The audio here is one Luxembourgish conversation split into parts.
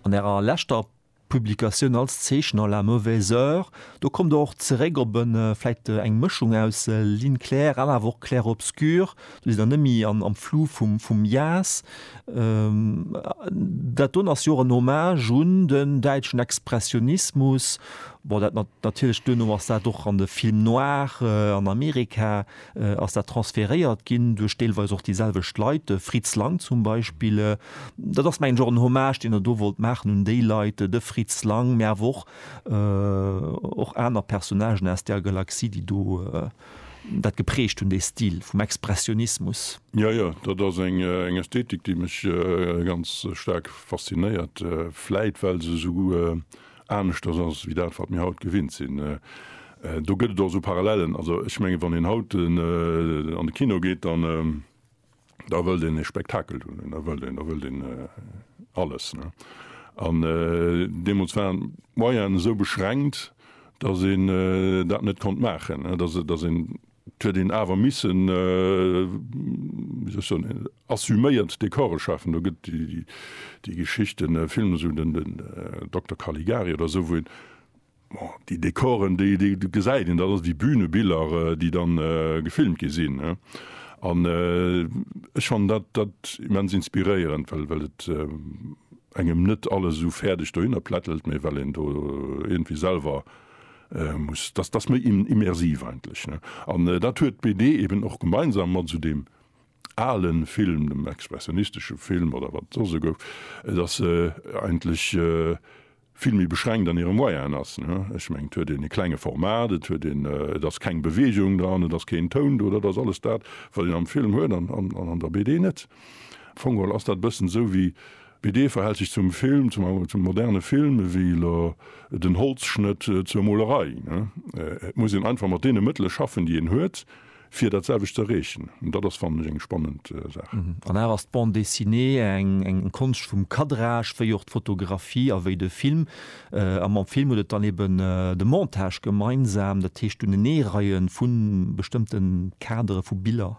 An Ärer leschter Publikatioun als Zeechner, La mauvaise heure, do kommt Der och zeréck op e vläicht eng Mëschung aus Ligne claire an awer och clair-obscur. Do sidd Der net méi am Flou vum Jas. Dat doten ass jo och en Hommage un den däitschen Expressionismus. Bon, dat natierlech duerno ass dat och an de Film noir an Amerika. ass dat transferéiert ginn duerch deelweis och déi selwecht Leit, de Fritz Lang zum Beispill. Dat ass mengen ech och en Hommage, deen Der do wollt maachen un déi Leit, de Fritz Lang, mä awer och och aner Personnagen aus där Galaxie, déi do dat geprägt hunn, dee Stil vum Expressionismus. Jo, jo, dat ass eng Ästhetik, déi mech ganz staark faszinéiert, vläit well se esou aneschters ass wéi dat, wat mir haut gewinnt sinn. Do gëtt et och esou Parallelen. Also ech menge wann een haut an de Kino geet, dann da wëllt een e Spektakel hunn, da wëllt een, da wëllt een alles. An deemools waren d'Moyenen esou beschränkt, datt een dat net konnt maachen, datt een 't huet een awer missen, wéi soll ech soen, assuméiert Dekore schafen. Do gëtt déi Geschicht, den Film, esou den Dokter Caligari oder esou, wou een, bon, déi Dekoren, déi, déi gesäit een, dat ass wéi Bühnebiller, déi dann gefilmt gi sinn. An ech fannen dat, dat immens inspiréierend, well, well et engem net alles esou fäerdeg dohinner plättelt, mee well een do iergendwéi selwer muss, dass dass méi immersiv eigentlech, ne? An dat huet d'BD eben och gemeinsam mat esou deem ale Film, dem expressionistesche Film oder wat et soss e gouf, dass se eigentlech vill méi beschränkt an hire Moyenen ass, ne? Ech mengen, et huet een e klenge Format, et huet een, et ass keng Bewegung dran, et ass keen Toun do, dat ass alles dat, wat een am Film huet an an der BD net. Am Fong geholl ass dat e bëssen esou wéi BD verhält sech zum Film, zum moderne Film, ewéi lo den Holzschnëtt zur Molerei. Et muss een einfach mat deene Mëttele schaffen, déi een huet, fir dat selwecht z'erreechen. An dat ass, fannen ech, eng spannend Saach. An awer ass d'Bande dessinée eng Konscht vum Cadrage, wéi och d'Fotografie a wéi de Film. A mam Film huet et dann eben de Montage gemeinsam, dat heescht d'Uneneereie vu bestëmmte Kadere vu Biller.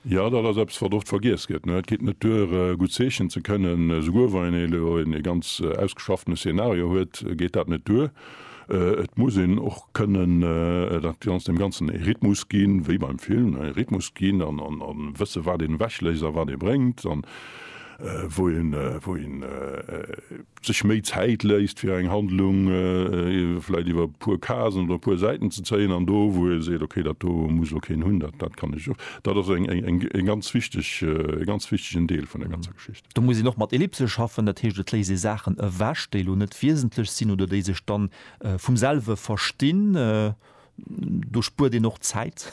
Jo, dat ass eppes, wat oft vergiess gëtt. Et geet net duer, gutt zeechnen ze kënnen. Souguer wa een elo e ganz ausgeschaffene Szenario huet, geet dat net duer. Et muss een och kënnen dat Ganzt, deem Ganzen e Rhythmus ginn, wéi beim Film, e Rhythmus ginn a wësse wat een ewechléisst a wat ee bréngt an wou een, wou een. sech méi Zäit léisst fir eng Handlung vläit iwwer e puer Casen oder e puer Säiten ze zéien an do wou e seet, okay dat do muss elo keen hunn, dat dat kann ech och. Dat ass eng eng eng e ganz wichteg e ganz wichtegen Deel vun der ganzer Geschicht. Do muss een och mat Ellipse schaffen, dat heescht et léisst ee Saachen ewech déi elo net wiesentlech sinn oder déi sech dann vum selwe verstinn. Do spuert een och Zäit.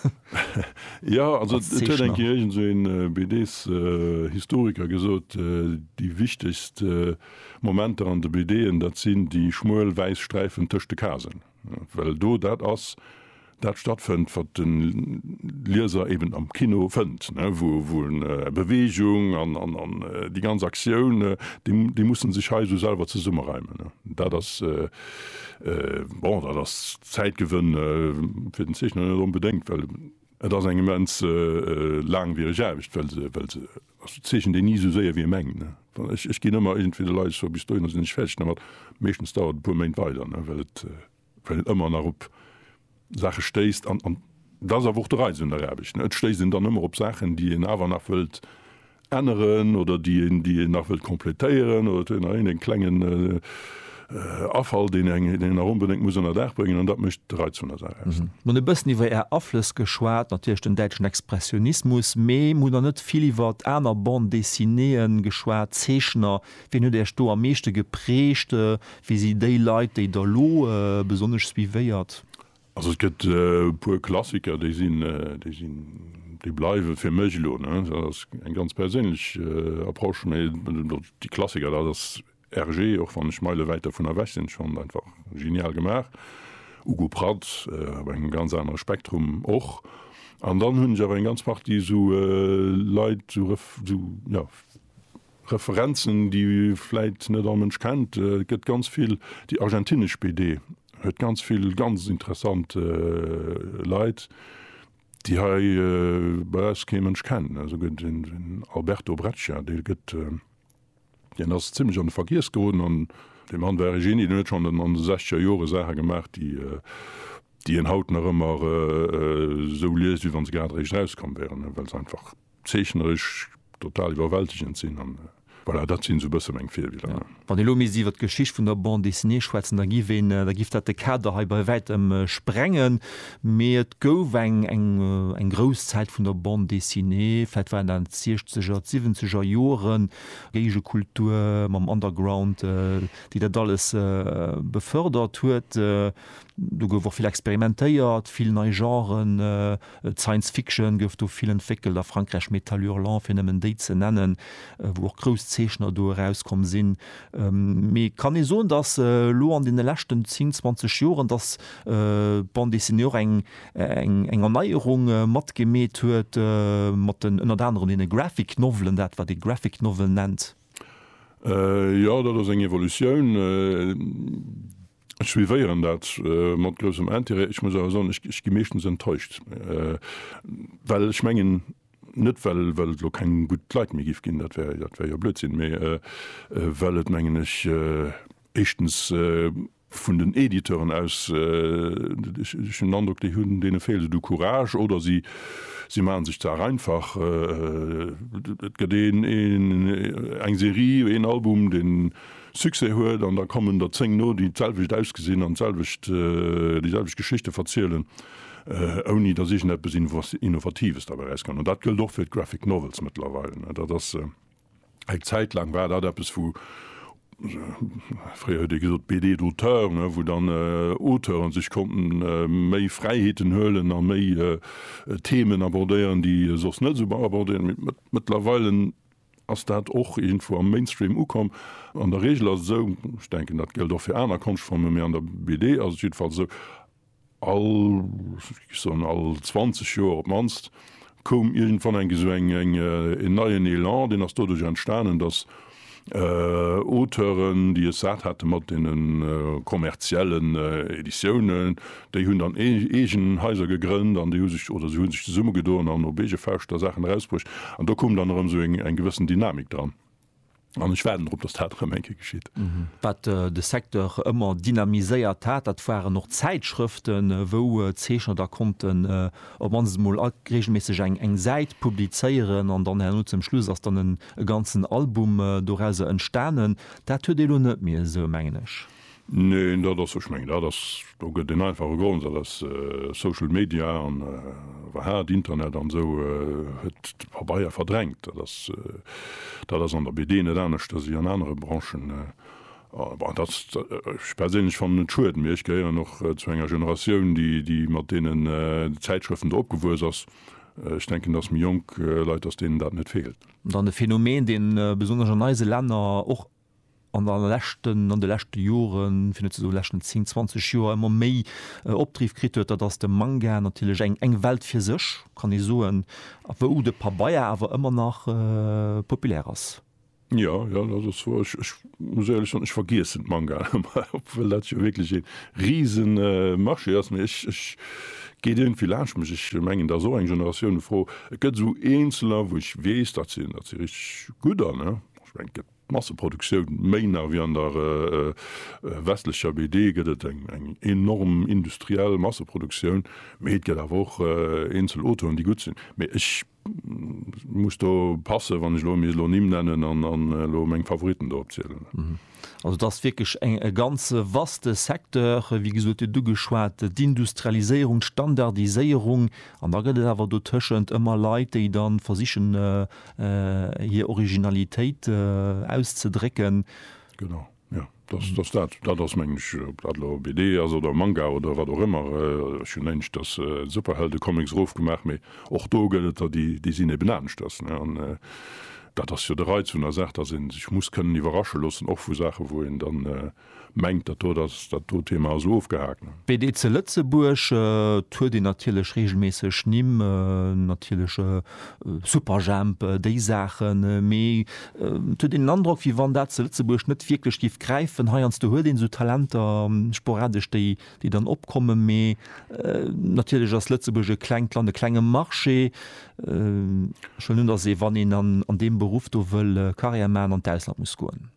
Jo, also et huet eng Kéier iergend esou een BDshistoriker gesot, déi wichtegst Momenter an de BDen, dat sinn déi schmuel wäiss Sträifen tëscht de Kasen, well do dat ass, dat stattfënnt, wat de Lieser eben am Kino fënnt, wou en Beweegung an déi ganz Aktioun, déi muss en sech hei esou selwer zesummereimen. Dat ass Bon, dat ass Zäitgewënn fir den Zeechner net onbedéngt, well et ass eng immens laangwiereg Aarbecht, well se, well se, also zeechent een ni esou séier, wéi ee mengt. Ech, ech ginn ëmmer iergendwéi de Leit scho, bis dohinner sinn ech fäerdeg dermat. Meeschtens dauert et e puer Méint weider, well et, well et ëmmer nach op Saache stéisst, an dat ass awer och de Reiz un der Aarbecht, ne, et stéisst een dann ëmmer op Saachen, déi een awer nach wëllt änneren oder déi een, déi een nach wëllt completéieren, oder et huet een nach iergendeng klengen Afall, deen een nach onbedéngt muss ënner Daach bréngen, an dat mécht de Reiz vun der Saach aus. Mir hunn e bëssen iwwer Är Aflëss geschwat, natierlech den däitschen Expressionismus, mee mir hunn nach net vill iwwert aner Bande-dessinéeën geschwat, Zeechner, Wien huet Äech do am meeschte geprägt? Wie si déi Leit, déi Der elo besonnesch suivéiert? Also et gëtt e puer Klassiker, déi sinn, déi sinn, déi bleiwe fir mech elo, ne. Dat ass eng ganz perséinlech Approche, mä déi Klassiker, dat ass Hergé, och wann ech meileweid dervun ewech sinn, schonn einfach genial gemaach. Ugo Pratt, op engem ganz anere Spektrum och. An dann hunn ech awer eng ganz Partie esou Leit, esou, esou, jo, Referenzen déi vläit net all Mënsch kennt, et gëtt ganz vill déi argentinesch BD huet ganz vill ganz interessant Leit déi hei bei eis kee Mënsch kennt. Esou gëtt den Alberto Breccia, dee gëtt deen ass zimlech an de Vergiess geroden an dee Mann war e Genie, deen huet schonn an de sechzeger Jore Saache gemaach déi déi een haut nach ëmmer esou liest wéi wann se grad eréischt erauskomm wäeren, well se einfach zeechneresch total iwwerwältegend sinn an voilà, dat sinn esou e bësse meng Virbiller. Jo, wann ee elo misst iwwert d'Geschicht vun der Bande dessinée schwätzen, da giff een, da giff dat de Kader hei bei wäitem sprengen, mee et gouf eng, eng, eng grouss Zäit vun der Bande dessinée, vläicht waren dat d'Siechzeger, d'Siwwenzeger Joren, Géigekultur mam Underground, déi dat alles befördert huet. Do gouf och vill experimentéiert, vill nei Genren. D'Science Fiction gouf do vill entwéckelt, a Frankräich Métal Hurlant, fir nëmmen déi ze nennen, wou och grouss Zeechner do erauskomm sinn. Mee kann ee soen, datt elo an deene leschten zéng, zwanzeg Joren, datt d'Bande Dessinée och eng Erneierung matgemeet huet, mat den, ënnert anerem, deene Graphic Novelen, dat wat ee Graphic Novel nennt? Jo, dat ass eng Evolutioun. Ech suivéieren dat mat groussem Intérêt. Ech muss awer soen, ech gi meeschtens enttäuscht, well ech mengen, net well well et elo keng gutt Leit méi giff ginn, dat wär dat wär jo Blödsinn, mee well et mengen ech éischtens vun den Editeuren aus, ech hunn den Androck, déi hunn, deene feelt et u Courage oder si si maachen sech d'Saach einfach. Et gëtt een een eng Serie, een Album, deen Succès huet an da kommen der 10 no, déi d'selwecht ausgesinn an d'selwecht, déi selwecht Geschichte verzielen, ouni dass iergendeppes Innovatives derbäi erauskënnt. An dat gëllt och fir d'Graphic Novels mëttlerweil. Dat ass, eng Zäit laang war dat eppes, wou, fréier huet ee gesot BD d'auteur, wou dann Auteure sech konnten méi Fräiheeten huelen a méi Themen abordéieren, déi soss net esou abordéiert ginn. Mëttlerweil Ass dat och iergendwou am Mainstream ukomm? An der Reegel ass et esou, ech denken dat géllt och fir aner Konschtformen, mee an der BD ass et jiddefalls esou, all, ech géif soen, all 20 Joer op d'mannst koum iergendwann eng esou eng, een neien Elan. Deen ass doduerch entstanen, datt Auteuren, déi es sat hate mat deene kommerziellen Editiounen, Déi hunn dann eegen Haiser gegrënnt an déi hu sech, oder si hu sech zesummegedoen an op eege Fauscht da Saachen erausbruecht. An do koum dann erëm esou eng gewëssen Dynamik dran. An ech waarden drop, datt dat erëm eng Kéier geschitt. Wat de Secteur ëmmer dynamiséiert hat, dat waren och Zäitschrëften, wou Zeechner da konnten op d'mannst emol regelméisseg eng Säit publizéieren an dann herno zum Schluss ass dann e ganzen Album dorauser entstanen. Dat huet ee elo net méi esou, mengen ech. Neen, dat ass, ech mengen, dat ass, do gëtt en einfache Grond, dat ass Social Media an iwwerhaapt Internet an esou huet de Pabeier verdrängt. Dat ass, dat ass an der BD net anescht ewéi an anere Branchen. Bon, dat ass, ech perséinlech fannen et schued, mee ech gehéieren och zu enger Generatioun, déi, déi mat deenen Zäitschrëften do opgewuess ass. Ech denken, dass méi jonk Leit, dass deenen dat net feelt. Dann e Phänomen, dee besonnesch an eise Länner och an der leschten, an de leschte Joren, fir net ze soen leschten 10, 20 Joer ëmmer méi Opdriff kritt huet, dat ass de Manga, natierlech eng eng Welt fir sech, kann ee soen, wou de Pabeier awer ëmmer nach populär ass. Jo, jo, dat ass wouer. Ech ech muss éierlech soen, ech vergiessen d'Mangaen ëmmer, obwuel dat jo wierklech ee risen Marché ass, mee ech ech geet iergendwéi laanscht mech. Ech mengen, dat ass och eng Generatiounefro. Et gëtt esou eenzeler, wou ech weess, dat si dat si richteg gutt an Ech mengen, d'Masseproduktioun, méi nach wéi an der westlecher BD, gëtt et eng enorm industriell Masseproduktioun, mee et gëtt awer och eenzel Autoen, déi gutt sinn. Mee ech muss do passen, wann ech elo misst elo Nimm nennen an elo meng Favoritten do opzielen. Also et ass wierklech e ganze vaste Secteur, wéi gesot, Dir hutt ugeschwat d'Industrialiséierung, d'Standardiséierung an da gëtt et awer dotëschent ëmmer Leit, déi da versichen hir Originalitéit auszedrécken. Genau, jo, dass dass dat dat ass, mengen ech, ob dat elo BD ass oder Manga oder wat och ëmmer. Ech hunn éischters Superheldecomics erofgemaach, mee och do gëtt et der, déi déi sinn eben aneschters, ne? An dat ass jo de Reiz vun der Saach, dass ee sech muss kënnen iwwerrasche loossen, och vu Saache wou een dann, mengt, datt do datt dat do Thema ass ofgehaakt. BD ze Lëtzebuerg, et huet een natierlech reegelméisseg Nimm, natierlech Superjhemp, déi Saachen, mee et huet een den Androck, wéi wann dat ze Lëtzebuerg net wierklech géif gräifen. Heiansdo huet een esou Talenter sporadesch, déi dann opkommen, mee natierlech ass Lëtzebuerg e klengt Land, e klenge Marché. Ech wëll net, datt ee, wann een an deem Beruff do wëll Karriär maachen, an d'Ausland muss goen.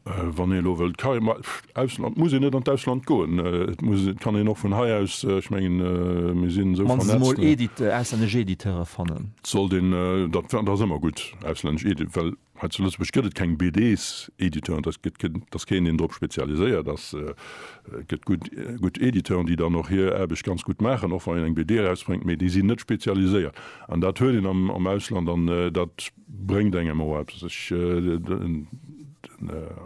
Wann een elo wëllt d'Karriär, ma Ausland, muss een net an d'Ausland goen, et muss, et kann een och vun hei aus, ech mengen, mir sinn esou vernetzt. Mannstens emol Edit, auslännesch Editeure fannen. Sollt een, dat ass ëmmer gutt, auslännesch Edit, well hei zu Lëtzebuerg gëtt et keng BDs-Editeuren, dat gëtt keen, et ass keen, deen drop spezialiséiert ass. Et gëtt gutt, gutt Editeuren, déi dann och hir Aarbecht ganz gutt maachen, och wann een eng BD erausbréngt, mee déi sinn net spezialiséiert. An dat huet een am, am Ausland, an dat. Bréngt engem och eppes. Ech, den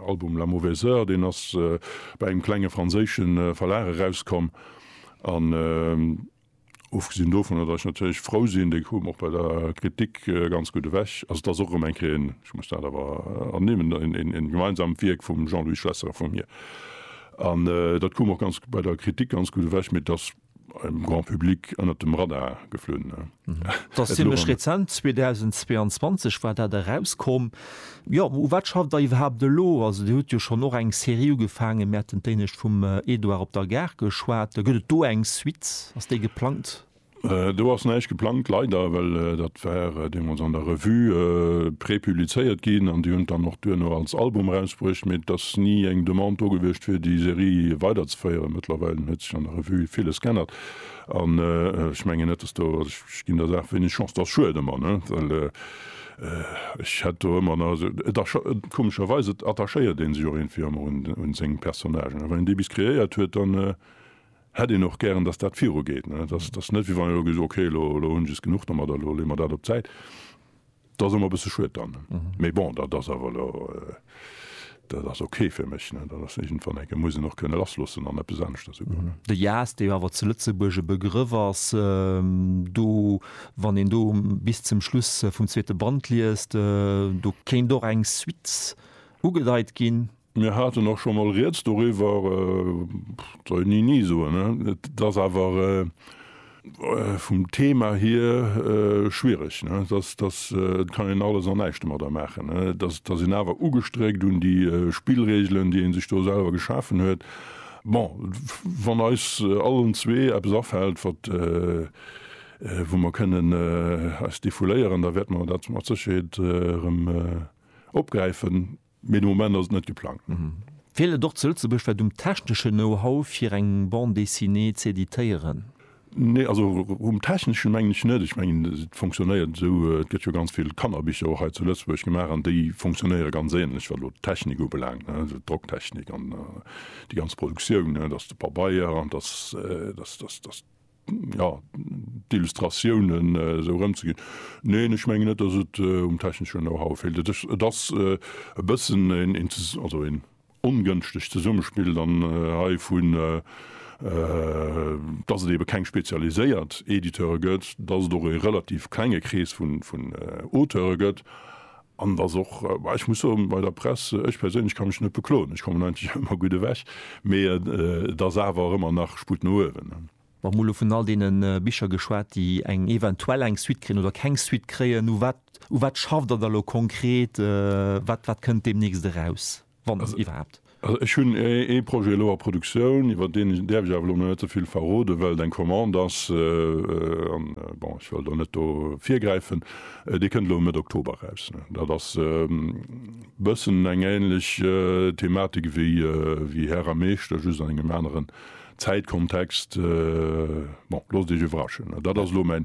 Album La mauvaise heure, deen ass bei engem klenge franséische Verlag erauskomm. An ofgesinn dovunner, datt ech natierlech frou sinn, dee koum och bei der Kritik ganz gutt ewech. Also et ass och erëm eng Kéier een, ech muss dat awer ernimmen, een gemeinsamt Wierk vum Jean-Louis Schlesser a vu mir. An dat koum och ganz bei der Kritik ganz gutt ewech. Mee et ass Beim Grand Public ënnert dem Radar geflunn. Et ass zimlech rezent, 2022 war dat erauskomm. Jo, u wat schafft Der iwwerhaapt elo? Also Dir hutt jo schonn och eng Serie ugefaangen, mir haten d'Éinescht vum Edouard op der Gare geschwat. Gëtt et do eng Suite? Ass déi geplangt? Do ass näischt geplangt, leider, well dat war deemools an der Revue prepublizéiert ginn an déi hunn et dann och duerno als Album erausbruecht, mee et ass ni eng Demande do gewiescht fir déi Serie weiderzeféieren. Mëttlerweil huet an der Revue villes geännert an ech mengen net, dass do, also ech ginn der Saach wéineg Chance, et ass schued ëmmer, ne, well ech hätt do ëmmer nach esou, et ass scho komescherweis, et attachéiert ee sech och iergendwéi ëmmer un seng Personnagen a wann een déi bis kreéiert huet, dann hätt een och gären, dass dat virugeet, ne, et ass net, wéi wann een elo gesot, okay, elo hunn ech es genuch domadder, elo leeë mer dat op d'Säit. Dat ass emmer e bësse schued dann. Mee bon, dat ass awer elo, dat ass ok fir mech. Dat ass iergendwann, enke muss een och kënne lassloossen an eppes aneschtes ugoen. De Jazz, dee jo awer zu Lëtzebuerg e Begrëff ass, do, wann een do bis zum Schluss vum zweete Band liest, do kéint och eng Suite ugedeit ginn. Mir haten och scho mol Rieds doriwwer, et soll een ni ni soen. Et ass awer vum Thema hier schwierig. Et kann een alles an näischt domadder maachen. Et ass een awer ugestréckt un déi Spillregelen, déi ee sech do selwer geschafen huet. Bon, wann eis allen zwee eppes afält, wat, wou mer kënnen eis defouléieren, da wäerte mer dat mat Sécherheet erëm opgräifen. Mee de Moment ass et net geplangt. Feelt et och zu Lëtzebuerg wat um techneschen Know-how fir eng Bande dessinée z'editéieren? Nee, also um techneschen mengen ech net. Ech mengen et fonctionnéiert esou, et gëtt jo ganz vill Kannerbicher och hei zu Lëtzebuerg gemaach an déi fonctionnéiere ganz ähnlech wat elo d'Technik ubelaangt, also d'Drocktechnik an déi ganz Produktioun, dass de Pabeier an dass, dass, dass, dass. jo, d'Illustratiounen esou erëmzeginn. Neen, ech mengen net, datt et um techneschen Know-how feelt. Et ass, et ass e bëssen een, een zes-, also een ongënschtegt Zesummespill dann hei vun, datt et eebe keng spezialiséiert Editeure gëtt, datt et och e relativ klenge Krees vun, vun Auteure gëtt. An et ass och, ech muss soen, bei der Press, ech perséinlech ka mech net bekloen, ech kommen eigentlech ëmmer gutt ewech, mee et ass awer ëmmer nach Sputt no uewen. Mä emol elo vun all deene Bicher geschwat, déi eng eventuell eng Suite kréien oder keng Suite kréien, u wat schafft Der da elo konkret, wat kënnt deemnächst eraus? wann et iwwerhaapt. Also ech hunn ee Projet elo a Produktioun, iwwert deen däerf ech awer elo nach net ze vill verroden, well et eng Commande ass, an, bon, ech wëll do net do virgräifen. Dee kënnt elo Mëtt Oktober eraus. Dat ass e bëssen eng änlech Thematik wéi Här a Meeschter, just an engem aneren Zäitkontext. Bon, loosst Iech iwwerraschen. Dat ass elo mäin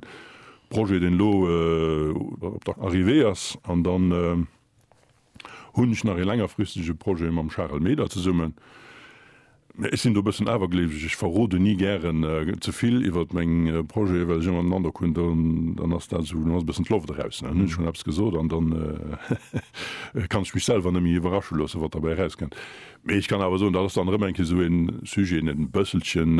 Projet, deen elo op der Arrivée ass an dann, hunn ech nach ee längerfristege Projet mam Charel Meder zesummen. Mä ech sinn do e bëssen awergleeweg, ech verroden ni gären ze vill iwwert meng Projete well ech ëmmer den Androck hunn, dann ass dat esou, dann ass e bëssen d'Loft eraus. Dann hunn ech schonn eppes gesot an dann kann ech mech selwer net méi iwwerrasche loossen, wat derbäi erauskënnt. Mee ech kann awer soen, dat ass dann erëm eng Kéier esou e Sujet, deen et e bësselchen,